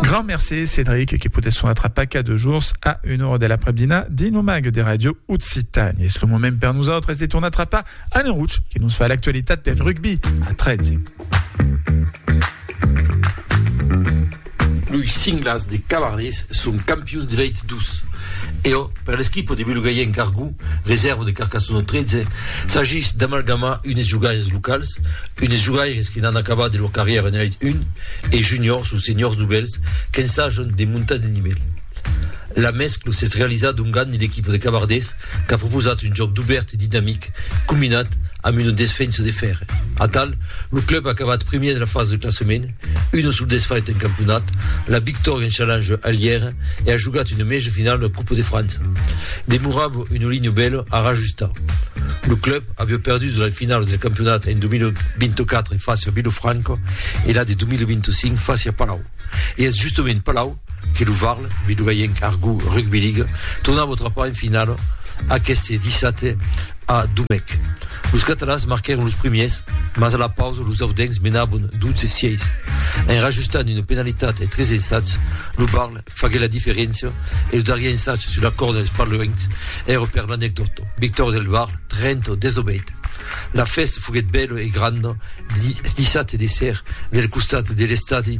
Grand merci Cédric qui poudèt son atrapar cada jours a una hora de l'après-dina dins lo mag de Radio Occitània. És lo moment per nosaltres de tornar atrapar Anne Rouch qui nos fa l'actualitat del rugby a 13. Los cinglas de Cavardés son campions de l'Elite 12. E o, per l'esquipo de Belugaienc Argou, reserva de Carcassona 13, s'agís d'amalgamar unes jogaires locals, Un des jogaires que n'an acabat de lor carrièra en Elite 1 e Juniors o Seniors dobèls qu'ensajan de montar de nivèl. La mèscla s'es realizada dongant l'equipa de Cabardés qu'a proposat un jòc dobèrt e dinamic combinat amb una desfensa de fèrre. Atal, lo club a acabat primièr de la fasa de classament, Una sul desfait en campionat, la victòria en challenge a Lièra e a jogat una mèja finala de Coupe de França. Demorava una linha bèla a rajustar. Lo club aviá perdut la finala del campionat en 2024 fàcia Vilofranca e la de 2025 fàcia Palau. E es justament Palau Que lo Varl, Vidogayenc Argo Rugby League, tornava trapar en finala aqueste dissabte a Domècq. Los catalans marquèron los primiers, mas a la pausa los audencs menabon 12 sièis. En rajustant una penalitat e tres ensats, lo Varl faguèt la diferéncia e lo darrier ensat sus la còrda dels parloencs èra per l'anecdòta. Victòria del Varl 30 a 18. La fèsta foguèt bèla e granda dissabte de ser del costat de l'estadi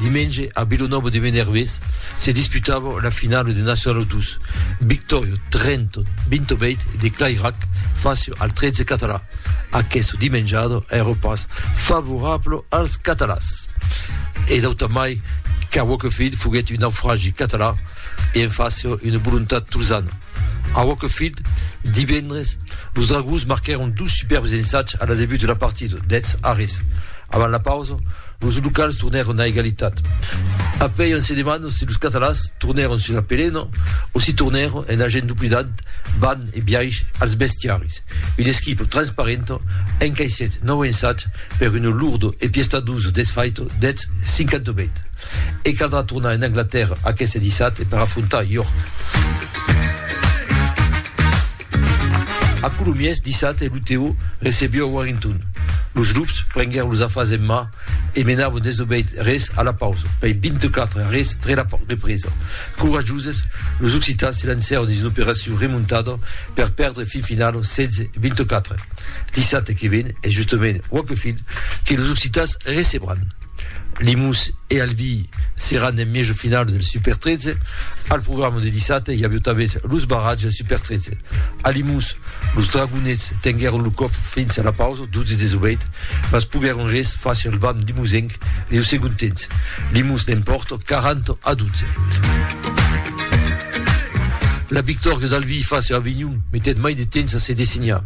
Dimenge a Vilonòva de Menervés se disputava la finala de Nacional 2, victòria 30, 28 de Clairac face al 13 català. Aquesta dimenjada èra pas favorabla als catalans. E d'autant mai qu'Aroquefil foguèt un naufragi català e en face una volontat tolzana. A Wakefield, divendres, los Dragons marquèron dos superbs ensats a la debut de la partida, dètz arrés. Avant la pausa, los locals tornèron a egalitat. Après on se demanda si los catalans tornèron sus la pelena o si tornèron en agent duplinat ban e biaish als bestiaris. Un esquipo transparento encaissèt nòu ensats per un lurdo e piestaduso desfaito deth 58 e caldrà tornar en Anglatèrra aqueste dissabte per afrontar York. A Colomiers, dissabte, lo Teo recebió a Warrington. Los Loups prenguèron los afars en man e menavon desobeid res a la pausa, pei 24 a res tre la represa. Corajoses, los occitans se lancèron dins una operacion remontada per perdre fin finau 16-24 dissabte que ven e justament quauque fin que los occitans recebran Limous e Albi seràn en mièjo finau del Super 13 al programa de dissabte i avió tanben los barratges del Super 13 a Limous los Dragonets tenguèron lo còp fins a la pausa Dotze des obrèit pas poguèron res far sur lo bam limousenc leu segond temps. Limous l'empòrt 40 a 12. La victòria d'Albi far sur Avignon metèt mai de temps a se dessinhar.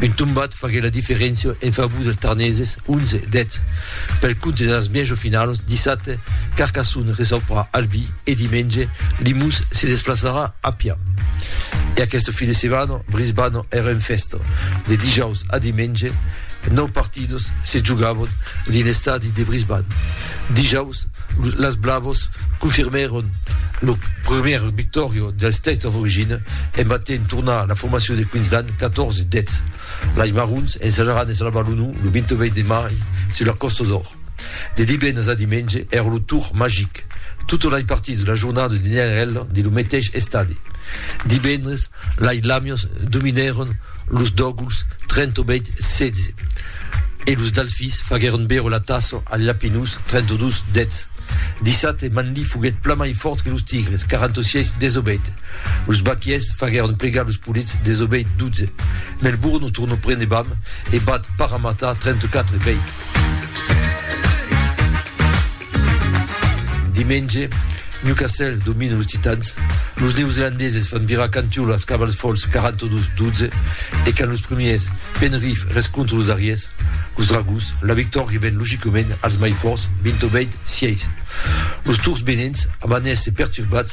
Un tombat faguèt la diferéncia en favor dels Tarneses 11 deth. Pel compte de las mièjo finalos, dissabte, Carcassonne reçoprà Albi. E dimenge, Limus se desplaçarà a pian. E aqueste fin de setmana, Brisbane èra en fèsta. De dijaus a dimenge, nòu partidas se jogavan dins l'estadi de Brisbane. Dijaus, las Blavas confirmèron la primièra victòria del State of Origin en batent tornar la formacion de Queensland 14 dètz. Lais marrons ensajaran de salvar lo nau lo 28 de mai sus la Còsta d'Or. De divendres a dimenge èra lo tour magic. Totes lais partits de la jornada de Niagarella dins lo meteis estadi. Divendres, lais lamios dominèron los dòguls 38, 16 e los dalfis faguèron beure la tassa als lapinus 32, 10. Dissabte, Manly foguèt plan mai fòrt que los tigres, 46, 18. Los baquiers faguèron plegar los polits desobeit 12. Melbourne o tornò prene bam e bat Parramatta 34 bèit. Dimenge, Newcastle domina los Titans, los neozelandeses fan virar cantiòla als Cavals Fòls 42 12 e quand los premiers Penrith rescontra los darriers, los Dragons, la victòria ven logicament als mai fòrts 20 bèit 6. Los Tours Benents amanèsse perturbats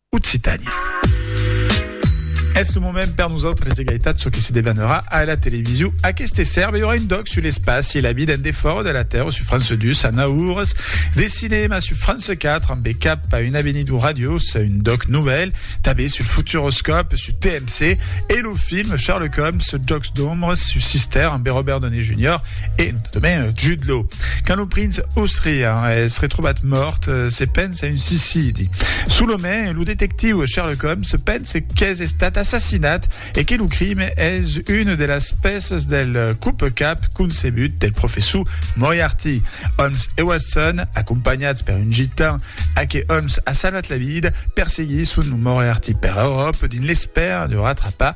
Occitània. Es lo moment per nosautres d'egalitat çò que se debanarà a la television aqueste sèrbe i aurà un doc sul espaci e la vida en defòra de la Tèrra su France 2 a 9 oras de cinèma su France 4 amb cap a un avenir du ràdio sa un doc novèl tanben sul futuroscòp su TMC e lo film Sherlock Holmes su jocs d'ombres su Sister amb Robert Downey Jr. e notamment Jude Law quand lo prince Osrian es retrobat mòrt se pensa C'est un suicidi. Sous le main, le détective Sherlock Holmes pense qu'es estat assassinat et que le crime es une de las peces del coupe cap concebut del professor Moriarty. Holmes et Watson, accompagnats per un gitan à que Holmes a salvat la vida, perseguissent Moriarty per Europe dins l'espère de rattrapar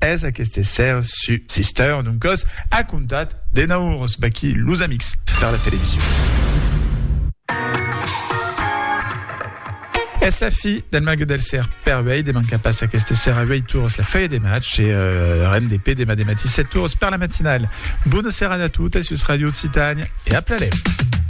Es aqueste ser su Sister d'un còs acontat de naurs vaquí los amics per la television. Es la fi del mague del ser per uèi, de manca pas aqueste ser a 8 tours la feuille de match e euh, RNDP demà de matí 7 tours per la matinale. Bona serada a totes sus Radio Occitània e a Plalèu.